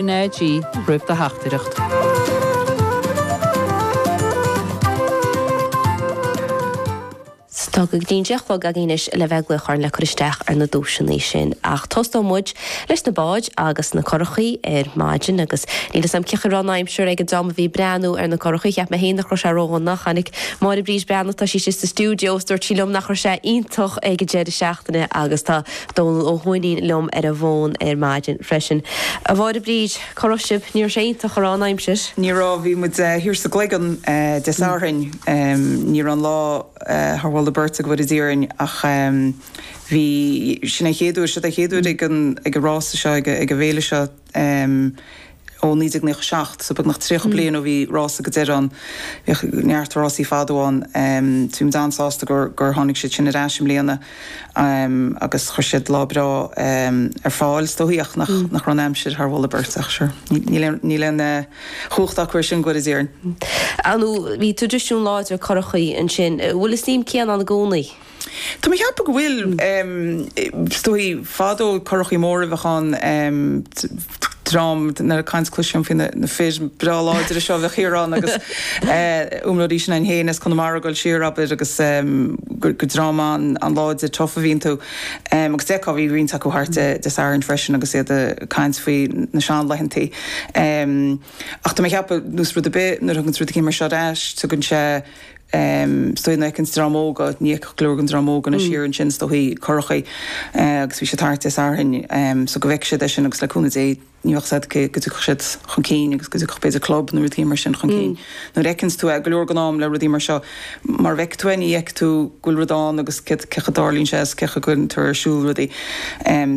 RnaG roimh do theachtaireacht. Tá go dtí an deich a chlog agaibh anois le bheith ag glaoch orainn le cur isteach ar na duaiseanna sin. Ach tosóidh muid leis na báid agus na curachaí ar maidin agus níl 'fhios a'm cén chaoi a raibh an aimsir ag an dream a bhí ag breathnú ar na curachaí. Cheap mé féin nach raibh sé ró-dhona. Tháinig Máire Bríd Breathnach, tá sí istigh sa stiúideo, 's dúirt sí liom nach raibh sé iontach ag an deireadh seachtaine agus tá Dónall Ó hUaithnín liom ar an bhfón ar maidin freisin. A Mháire Bríd, cá raibh sibh? Ní raibh sé iontach a raibh an aimsir. Ní raibh, bhí muid thiar sa gCloigeann Dé Sathairn. Ní raibh an lá thar mholadh beirte go bhfóire Dia orainn ach bhí, sin an chéad uair, seo an chéad uair ag an, ag an rása seo, ag an bhféile seo, um Ó 1997, so beagnach tríocha bliain ó bhí rása go deireadh ann. Bhíodh neart rásaí fadó ann. um Bhí muid an-sásta gur gur tháinig siad sin ar ais i mbliana um agus chuir siad lá breá um ar fáil. Is dóichí ach nach nach raibh an aimsir thar mholadh beirte ach sure níl aon níl aon eh chumhacht acu air sin, go bhfóire Dia orainn. Ar ndóigh, bhíodh traidisiún láidir curachaí ansin. Bhfuil an suim chéanna ann i gcónaí? Tá mé ag ceapadh go bhfuil. Is dóichí, fadó, curachaí móra a bheadh ann, dream, nuair a caint, cloisim faoi na fir breá láidre seo a bheadh thiar ann agus iomróirí s'againn fhéin as Conamara ag dul siar, abair, agus gur dream an-láidir tough a bhí iontu. Agus d'fheicfeá, bhí roinnt acu thart Dé Sathairn freisin agus iad ag caint faoi na seanlaethanta. Ach tá mé ag ceapadh, nós rud ar bith, nuair a thaganns rud éigin mar seo ar ais, tugann sé. Is dóichí na an dream óga, ní fheicfeadh go leor den dream óga anois thiar ansin, is dóichí, curachaí, agus bhí siad thart Dé Sathairn, so go bhfeicfidh siad é sin agus le cúnamh Dé ní bheadh 'fhios a'd go dtiocfadh siad chun cinn agus go dtiocfadh b'fhéidir club nó rudaí mar sin chun cinn. Nuair a fheiceanns tú é, go leor den am le rudaí mar seo, mara bhfeicfidh tú é ní fheicfidh tú go bhfuil rud ann agus céard, cén chaoi a dtarlaíonn sé is cén chaoi a gcuireann tú ar siúl rudaí.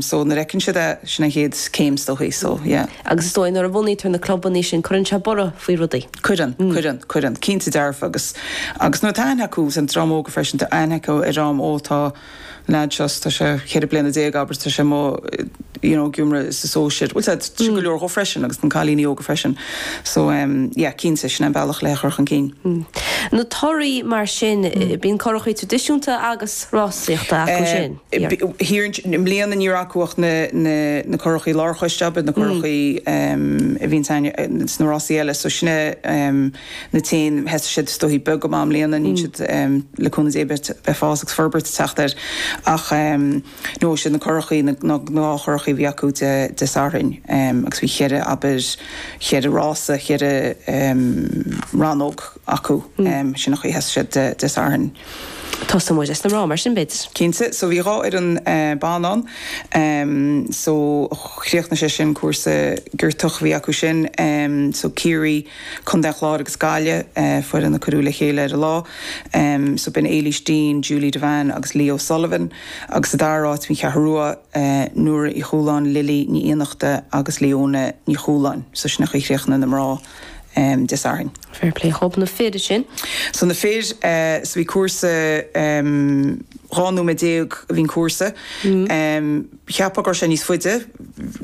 So nuair a fheiceann siad é, sin an chéad chéim is dóichí, so yeah. Agus is dóigh nuair a bhunaítear na clubanna sin cuireann sé borradh faoi rudaí. Cuireann, cuireann, cuireann. Cinnte dearfa agus, agus nuair atá aithne acu, bhí an dream óga freisin, tá aithne acu ar dhream, ó tá leaid seo, tá sé ceithre bliana déag, abair, tá sé mo, you know, ag iomramh sa sóisear, bhuel, tá sé go leor dhó freisin agus na cailíní óga freisin. So, em, yeah, cinnte, sin é an bealach le é chur chun cinn. Na torthaí mar sin, bíonn curachaí traidisiúnta agus rásaíochta acu sin. I mbliana ní raibh acu ach na curachaí lárchoiste, ab ea? Na curachaí a bhíonns sna rásaí eile. So sin na cinn. Thosaigh siad is dóichí beag go maith i mbliana. Níl siad, le cúnamh Dé, beidh fás agus forbairt ag teacht air. Ach no, siad na curachaí, na gnáthchurachaí a bhí acu Dé Sathairn. Agus bhí cheithre, abair, cheithre rása, cheithre rannóg acu. Sin an chaoi a sheas siad Dé Sathairn. Thosaigh muid leis na mná, mar sin, b'fhéidir. Cinnte. So bhí dhá fhoireann ban ann. So chríochnaigh siad sin cúrsa giortach a bhí acu sin. So Ciarraí, Contae an Chláir agus Gaillimh, foireann a cuireadh le chéile ar an lá. So b'in Éilís Deane, Julie Devane agus Leo Sullivan. Agus sa dara áit bhí an Cheathrú Rua, Nora Uí Chualáin, Lily Ní Fhiannachta agus Leona Ní Chualáin. So sin an chaoi a chríochnaigh na mná. de Sathairn. Fair play dhób na fir sin. So na fir, so bhí cúrsa, dhá nóiméad déag a bhí an cúrsa. Cheapadh go raibh sé níos faide,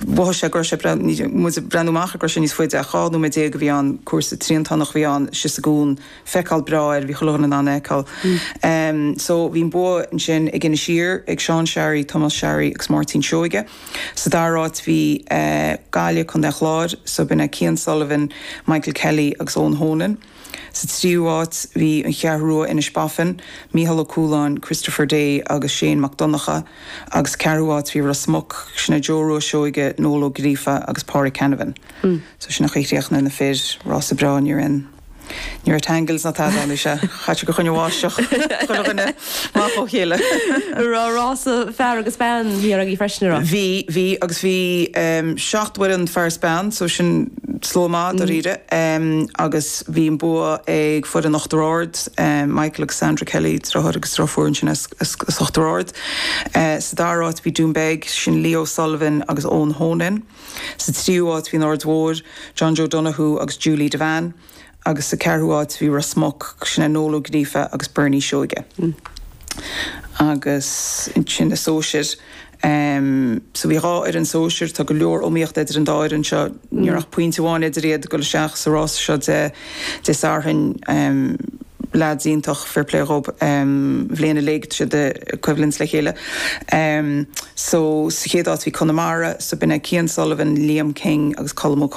mhothaigh sé go raibh sé muid ag breathnú amach go raibh sé níos faide ach dhá nóiméad déag a bhí ann, cúrsa triantánach a bhí ann, síos an cuan, feiceáil breá air, bhí chuile dhuine in ann a fheiceáil. So bhí an bua ansin ag Inis Oírr, ag Seán Sharry, Tomás Sharry agus Máirtín Seoige. Sa dara áit bhí Gaillimh, Contae an Chláir, so b'in Cian Sullivan, Michael Kelly agus Eoin Honan. Sa tríú áit bhí an Cheathrú Rua, Inishbofin, Micheál Ó Cualáin, Christopher Day agus Shane Mac Donnacha agus sa ceathrú áit bhí Ros Muc, sin Joe Rua Seoige, Noel Ó Gríofa agus Páraic Canavan. So sin an chaoi a chríochnaigh na fir, rása breá, ní raibh aon. Ní raibh tangles ná tada anois, ach coinníodh go, choinnigh an bháisteach chuile dhuine amach óna chéile. Raibh rása fear agus bean agaibh freisin, an raibh. Bhí, bhí, agus bhí seacht bhfoireann fear is bean, so sin slua maith dáiríre. Agus bhí an bua ag foireann Uachtar Ard, Michael agus Sandra Kelly, deartháir agus deirfiúr ansin as Uachtar Ard. Sa dara áit bhí Doonbeg, sin Leo Sullivan agus Eoin Honan. Sa tríú háit bhí an Aird Mhóir, John Joe Donoghue agus Julie Devane, agus sa ceathrú háit bhí Ros Muc, sin Noel Ó Gríofa agus Bernie Seoige. Agus ansin na sóisir. So bhí dhá fhoireann sóisir, tá go leor iomaíochta idir an dá fhoireann seo, ní raibh ach pointe amháin idir iad, dul isteach sa rása seo de, Dé Sathairn, leaids iontach, fair play dhób, an bhliain uilig, siad ag coimhlint le chéile. So, sa chéad áit bhí Conamara, so b'in Cian Sullivan, Liam King agus Colm Ó